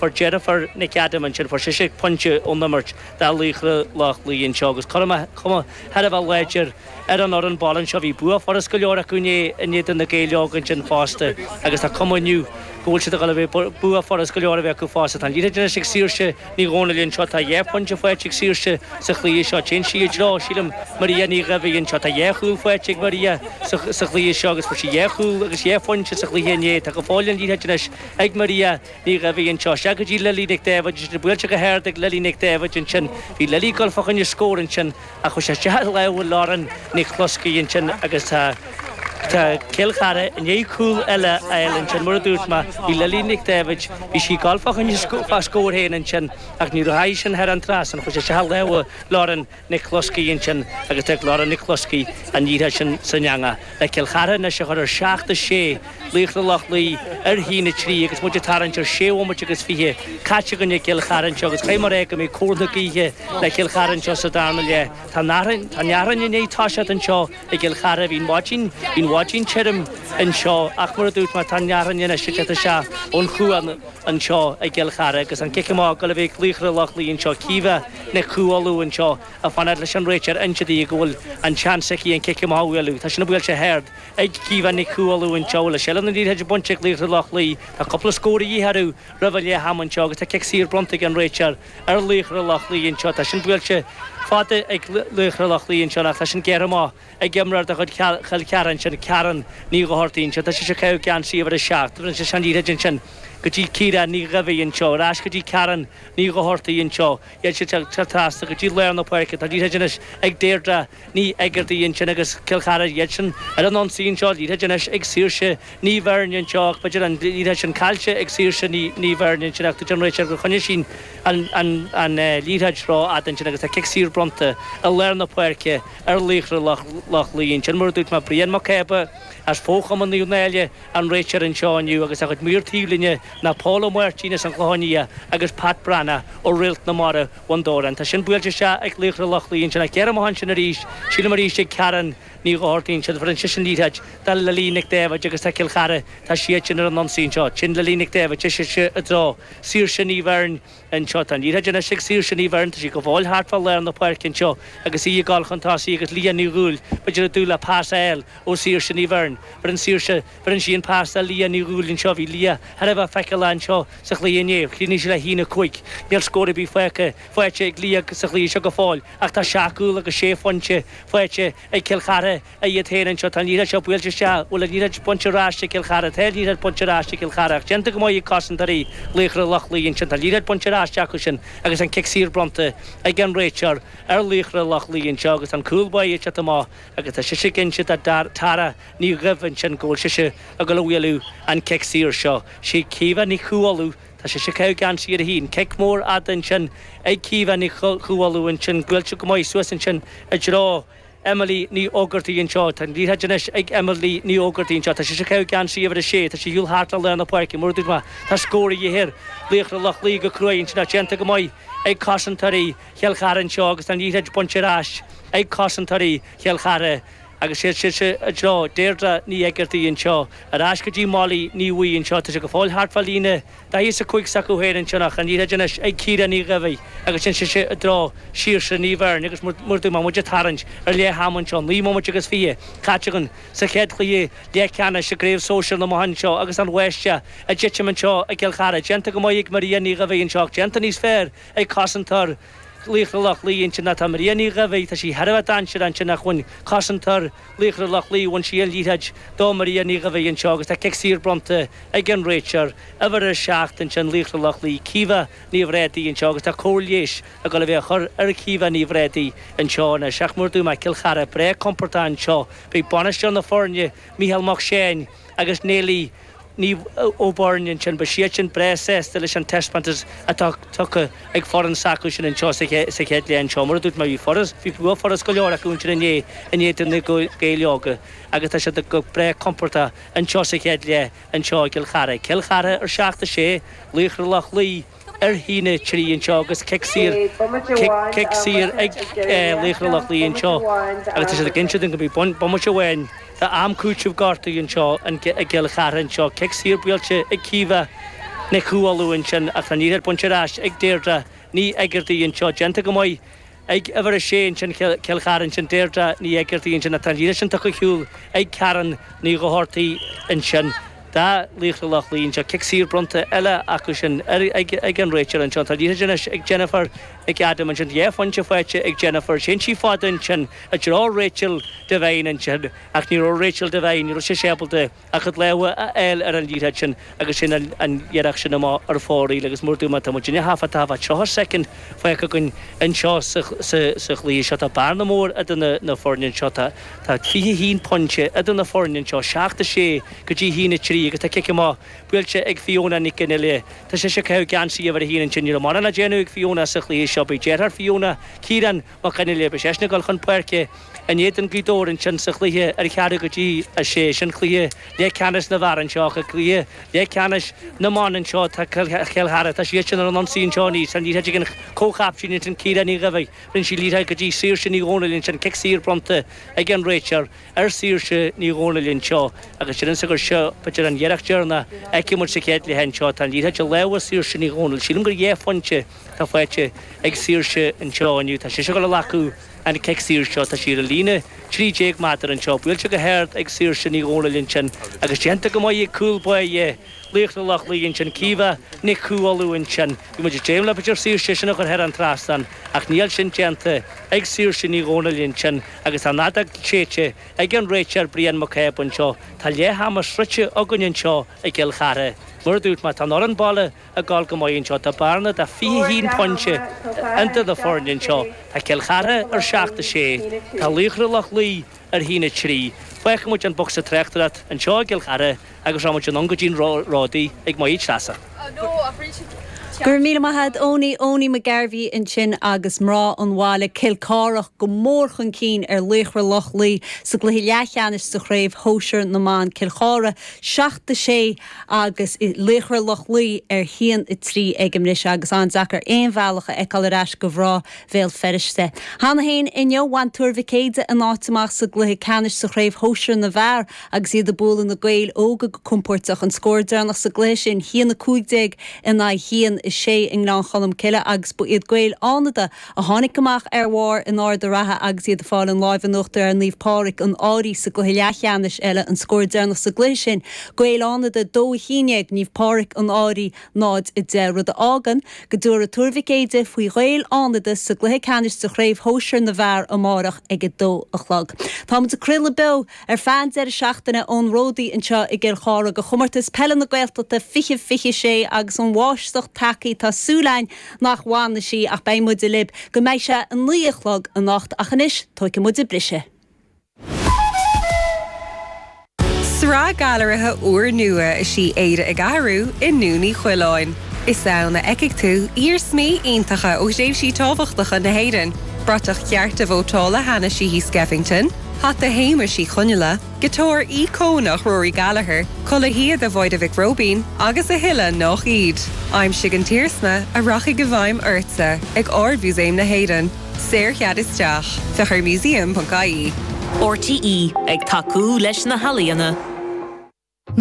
Fuair deirfiúr Nic Adam ansin, fuair sise pointe ón imirt do Laochra Loch Lao anseo agus cur amach, cuma, thar a bheith láidir ar an fhoireann baile anseo. Bhí bua furasta go leor acu inné in éadan Na Gaeil Óga ansin fosta agus tá cuma inniu go bhfuil siad ag dul a bheith, bua furasta go leor a bheith acu fosta. Tá an liathróid anois ag Saoirse Ní Dhomhnaill anseo, tá dhá phointe faighte ag Saoirse sa chluiche seo. Téann sí i dtreo, sílim, Maria Ní Dhaimhín anseo. Tá dhá chúl faighte ag Maria sa chluiche seo agus fuair sí dhá chúl agus dhá phointe sa chluiche inné. Tá go fóill an liathróid anois ag Maria. Ní Dhaimhín anseo. Sea, go dtí Lily Nic Dáibhid. Ansin buailte go hard ag Lily Nic Dáibhid ansin. Bhí Lily ag dul fá choinne scór ansin ach chuaigh sé isteach i lámha Lauren Nic Bhloscaidh ansin agus tá tá Cill Chartha i ndiaidh cúl eile a fháil ansin. Mar a dúirt mé, bhí Lily Nic Dáibhid, bhí sí ag dul fá choinne scór féin ansin ach ní dheachaigh sin thar an trasnán, chuaigh sé isteach i lámha Lauren Nic Bhloscaidh ansin agus d'fhág Lauren Nic Bhloscaidh an liathróid sin san eangach le Cill Chartha anois a chur ar seacht a sé, Laochra Loch Lao ar haon a trí agus muid ag tarraingt ar sé bhomaite agus fiche caite againn i gCill Chartha anseo agus cuma air go mbeidh cóir na gaoithe le Cill Chartha anseo sa darna leath. Tá an fhearthainn i ndiaidh toiseacht anseo i gCill Chartha. Bhí an mhaidín, bhí an mhaidín tirim anseo ach mar a dúirt mé tá an fhearthainn anois ag teacht isteach ón chuan anseo i gCill Chartha agus an cic amach ag dul a bheith ag laochra Loch Lao anseo, Caoimhe. Nic Cú Uladh anseo, ag fanacht leis an réiteoir a inse di go bhfuil an seans aici an cic amach a bhualadh. Tá sin buailte go hard ag Caoimhe Nic Cú Uladh anseo. Le seilbh na liathróide bainte ag laochra Loch Lao, tá cúpla scór a dhíth orthu roimh a leath ama anseo agus tá cic saor bronnta ag an réiteoir ar laochra Loch Lao anseo. Tá sin buailte fada ag laochra Loch Lao anseo ach tá sin gearrtha amach. ag imreoir de chuid Chill Chartha ansin Karen Ní Dhochartaigh ansin tá sise ag caitheamh geansaí uimhir a seacht bheireann sise an liathróid ansin go dtí Ciara Ní Dhaimhín anseo ar ais go dtí Karen Ní Dhochartaigh anseo téann sise anseo trasna go dtí lár na páirce tá an liathróid anois ag Deirdre Ní Éigeartaigh ansin agus Cill Chartha iad sin ar an ionsaí anseo an liathróid anois ag Saoirse Ní Bheirn anseo ach b'fhéidir an liathróid sin caillte ag Saoirse Ní Ní Bheirn ansin ach dúirt an réiteoir gur choinnigh sí an an an liathróid ró fhada ansin agus tá cic saor bronnta i lár na páirce ar laochra Loch Lao ansin, mar a dúirt mé, Brian Mac Cába as fochumann Naomh Náille, an réiteoir anseo inniu agus a chuid maor taobhlíne ná Pól Ó Máirtín as an gClochán Liath agus Pat Breathnach ó Réalt na Mara, Bhun Dobhráin. Tá sin buailte isteach ag laochra Loch Lao ansin ach gearrtha amach ansin arís, sílim arís ag Karen Ní Dhochartaigh ansin, bheireann sise an liathróid do Lily Nic Dáibhid agus tá Cill Chartha, tá siad sin ar an ionsaí anseo, téann Lily Nic Dáibhid, ise i dtreo, Saoirse Ní Bheirn, Anseo tá an liathróid anois ag Saoirse Ní Bheirn, tá sí ag gabháil thart fá lár na páirce anseo agus í ag dul chun tosaigh agus Leah Ní Dhúill b'fhéidir ag dúil le pas a fháil ó Saoirse Ní Bheirn. Bheireann Saoirse, bheireann sí an pas do Leah Ní Dhúill anseo, bhí Leah thar a bheith feiceálach anseo sa chluiche inné, chríochnaigh sí le haon a cúig. Níl scór ar bith faighte, faighte ag Leah sa chluiche seo go fóill ach tá seacht gcúl agus sé phointe faighte ag Cill Chartha, a iad féin anseo, tá an liathróid seo buailte isteach, bhuel an liathróid bainte ar ais ag Cill Chartha, tá an liathróid bainte ar ais ag Cill Chartha ach déanta go maith ag cosantóirí Laochra Loch Lao ansin, tá an liathróid bainte ar ais acu sin agus an cic saor bronnta ag an réiteoir ar Laochra Loch Lao anseo agus tá an cúl báire anseo go maith agus tá sise ag inse do Tara Ní Dhuibh ansin go bhfuil sise ag dul a bhualadh an cic saor seo, sí Caoimhe Nic Cú Uladh, tá sise ag caitheamh geansaí uimhir a haon, cic mór fada ansin ag Caoimhe Nic Cú Uladh ansin buailte go maith suas ansin i dtreo. Emily Ní Fhógartaigh anseo. Tá an liathróid anois ag Emily Ní Fhógartaigh anseo. Tá sise ag caitheamh geansaí uimhir a sé. Tá sí ag siúl thart le lár na páirce. Mar a dúirt mé, tá scór a dhíth ar Laochra Loch Lao go cruaidh ansin. Tá sé déanta go maith ag cosantóirí Chill Chartha anseo agus tá an liathróid bainte ar ais ag cosantóirí Chill Chartha agus téann sise i dtreo Deirdre Ní Éigeartaigh anseo. Ar ais go dtí Molly Ní Bhuí anseo. Tá sé go fóill thart fá líne. Daichead 's a cúig s'acu féin ansin ach an liathróid anois ag Ciara Ní Dhaimhidh agus téann sise i dtreo Shaoirse Ní Bheirn agus mar a dúirt mé muid ag tarraingt ar leath ama anseo, naoi mbomaite agus fiche caite againn sa chéad chluiche leathcheannais i gCraobh Sóisear na mBan anseo agus an bháisteach ag titim anseo i gCill Chartha. Déanta go maith ag Maria Ní Dhaimhidh anseo ach déanta níos fearr ag cosantóir Laochra Loch Lao ansin ach tá Maria Ní Dhaimhidh, tá sí thar a bheith dainséarach ansin ach bhain cosantóir Laochra Loch Lao, bhain sí an liathróid do Maria Ní Dhaimhidh anseo agus tá cic saor bronnta ag an réiteoir. Uimhir a 7 ansin, Laochra Loch Lao, Caoimhe Ní Bhrádaigh anseo agus tá cóir leighis ag dul a bheith á chur ar Chaoimhe Ní Bhrádaigh anseo anois ach mar a dúirt mé Cill Chartha breá compordach anseo. Beidh bainisteoir na foirne, Micheál Mac Seáin agus Néilidh. Ní Ó Beirn ansin, beidh siad sin breá sásta leis an taispeántas atá tugtha ag foireann s'acu sin anseo sa chéad leath seo. Mar a dúirt mé, bhí furast, bhí bua furast go leor acu ansin inné in éadan na Gaeil Óga agus tá siad go breá compordach anseo sa chéad leath anseo i gCill Chartha. Cill Chartha ar 7, 6, Laochra Loch Lao, ar a haon a trí anseo agus cic saor, cic, cic saor ag Laochra Loch Lao anseo agus tá siad ag inse dom go mbeidh bomaite amháin de am cúitimh gortaithe anseo in i gCill Chartha anseo, cic saor buailte ag Caoimhe Nic Cú Uladh ansin ach tá an liathróid bainte ar ais ag Deirdre Ní Éigeartaigh anseo, déanta go maith ag uimhir a sé ansin, Cill Chartha ansin, Deirdre Ní Éigeartaigh ansin ach tá an liathróid sin tugtha ar shiúl ag Karen Ní Dhochartaigh ansin do Laochra Loch Lao anseo, cic saor bronnta eile acu sin ag an réiteoir anseo, tá an liathróid anois ag Jennifer McAdam ansin, dhá phointe faighte ag Jennifer, téann sí fada ansin i dtreo Rachel Devine ansin ach ní raibh Rachel Devine, ní raibh sise ábalta. a cuid lámha a fháil ar an liathróid sin agus téann an iarracht sin amach ar fóraoil agus mar a dúirt mé tá muid in thart fá dtaobh de tríocha soicind fágtha againn anseo sa chluiche seo. Tá bearna mór idir na foirne anseo, tá fiche a haon pointe idir na foirne anseo, seacht a sé go dtí a haon a trí agus tá cic amach buailte ag Fiona Nic an Fhile. Tá sise ag caitheamh geansaí uimhir a haon ansin, ní raibh mórán le déanamh ag Fiona sa chluiche seo. Beidh deartháir Fiona, Ciarán, Mac Fhionnghaile beidh seisean ag dul chun páirce in éadan Gaoth Dobhair ansin sa chluiche ar cheathrú go dtí a sé sin cluiche leath ceannais na bhfear anseo agus cluiche leath ceannais na mban anseo tá Cill Chartha tá siad sin ar an ionsaí anseo aníos tá liathróid ag an comhchaptaen ansin Ciara Ní Dhaimhigh rinne sí liathróid go dtí Saoirse Ní Dhomhnaill ansin cic saor bronnta ag an réiteoir ar Saoirse Ní Dhomhnaill anseo agus déarfainnse gur seo b'fhéidir an iarracht deireanach a fheicfidh muid sa chéad leath anseo tá an liathróid i lámha Saoirse Ní Dhomhnaill sílim gur dhá phointe atá faighte ag Saoirse anseo inniu. Tá sise ag dul a ghlacadh an chic saor seo. Tá sí ar an líne 13 méadar anseo. Buailte go hard ag Saoirse Ní Dhomhnaill ansin agus déanta go maith ag cúl báire Laochra Loch Lao ansin, Caoimhe Nic Cú Uladh ansin. Bhí muid ag dréim le b'fhéidir Saoirse sin a chur thar an trasnán ach níl sin déanta ag Saoirse Ní Dhomhnaill ansin agus tá an fheadóg séidte ag an réiteoir Brian Mac Aodha anseo. Tá leath ama sroichte againn anseo i gCill Chartha. Mar a dúirt mé, tá an fhoireann baile ag dul go maith anseo. Tá bearna de fiche haon phointe idir na foirne anseo. Tá Cill Chartha ar seacht, a sé. Tá Laochra Loch Lao ar haon, a trí. Fágfaidh muid an bocsa tráchtaireacht anseo i gCill Chartha agus rachaidh muid anonn go dtí'n Ródaí ag Máire Treasa. Go raibh míle maith a'd Eoiní, Eoiní Mac Gairbheith ansin agus mná an bhaile, Cill Chartha go mór chun cinn ar Laochra Loch Lao sa gcluiche leathcheannais sa Chraobh Shóisir na mBan, Cill Chartha seacht, a sé. agus i Laochra Loch Lao ar haon 3 aige anois agus an-deacair aon bhealach a fheiceáil ar ais do mhná Bhéal Feirste. Cheana féin inniu, bhain Tuar Mhic Éide a n-áit amach sa gcluiche ceannais sa Chraobh Shóisear na bhFear agus iad ag bualadh na Gaeil Óga go compóirteach. An scór deireanach sa gcluiche sin, haon 15 in aghaidh haon 6 i nGleann Cholm Cille agus ba iad Gaeil Fhánada a tháinig amach ar bharr in Ard a' Rátha agus iad ag fáil an láimh in uachtar ar Naomh Pádraig an Fhairche sa gcluiche leathcheannais eile an scór deireanach sa gcluiche sin, Gaeil Fhánada 2-11 Naomh Pádraig an Fhairche 0-10 rud a fhágann go dtabharfaidh Tuar Mhic Éide faoi Ghaeil Fhánada sa gcluiche ceannais de Chraobh Shóisir na bhFear amárach ag 2 a chlog. Táimid ag craoladh beo! Ar feadh an deireadh seachtaine ón Ródaí anseo i gCill Chartha ag Comórtas Peile na Gaeltachta 20, 26 agus an bháisteach tagtha tá súil a'inn nach bhfanfaidh sí ach beidh muide libh go mbeidh sé a naoi a chlog anocht ach anois tóigfidh muide briseadh. Sraith gailearaithe úrnua is í Éire ag Athrú i nDún Uí Choileáin. Is ann a fheicfidh tú iarsmaí iontacha ó thréimhsí tábhachtacha na hÉireann, bratach chearta vótála Hanna Sheehy Skeffington, hata Shéamais Uí Chonghaile, giotár íocónach Rory Gallagher, culaith shíoda Mháire Mhic Róibín agus a thuilleadh nach iad. Aimsigh an t-iarsma a rachaidh i bhfeidhm ortsa ag Ard-Mhúsaem na hÉireann. Saorchead isteach. Féach ar museum.ie. RTÉ ag tacú leis na healaíona.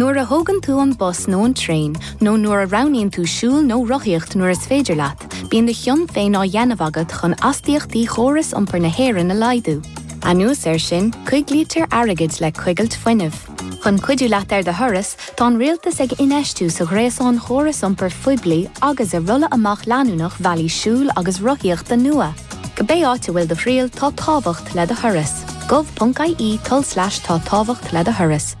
Nuair a thógann tú an bus nó an traein, nó nuair a roghnaíonn tú siúl nó rothaíocht nuair is féidir leat, bíonn do chion féin á dhéanamh agat chun astaíochtaí chóras iompair na hÉireann a laghdú. Anuas air sin, coiglítear airgead le coigilt fuinnimh. Chun cuidiú leat ar do thuras, tá an rialtas ag infheistiú sa ghréasán chóras iompair phoiblí agus i rolladh amach leanúnach bhealaí siúil agus rothaíochta nua. Cibé áit a bhfuil do thriall, tá tábhacht le do thuras. gov.ie tulslais tá tábhacht le do thuras.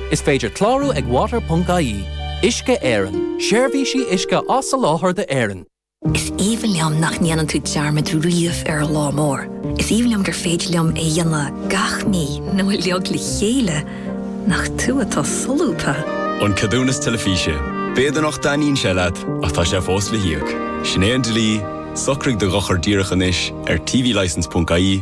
Is féidir clárú ag water.ie, Uisce Éireann, seirbhísí uisce á soláthar d'Éirinn. Is aoibhinn liom nach ndéanann tú dearmad riamh ar an lá mór. Is aoibhinn liom gur féidir liom é a dhéanamh gach mí nó uilig le chéile. Nach tú atá solúbtha! An Ceadúnas Teilifíse, B'fhéidir nach dtaitníonn sé leat ach tá sé fós le híoc. Sin é an dlí, socraigh do dhochar díreach anois ar tvlicense.ie,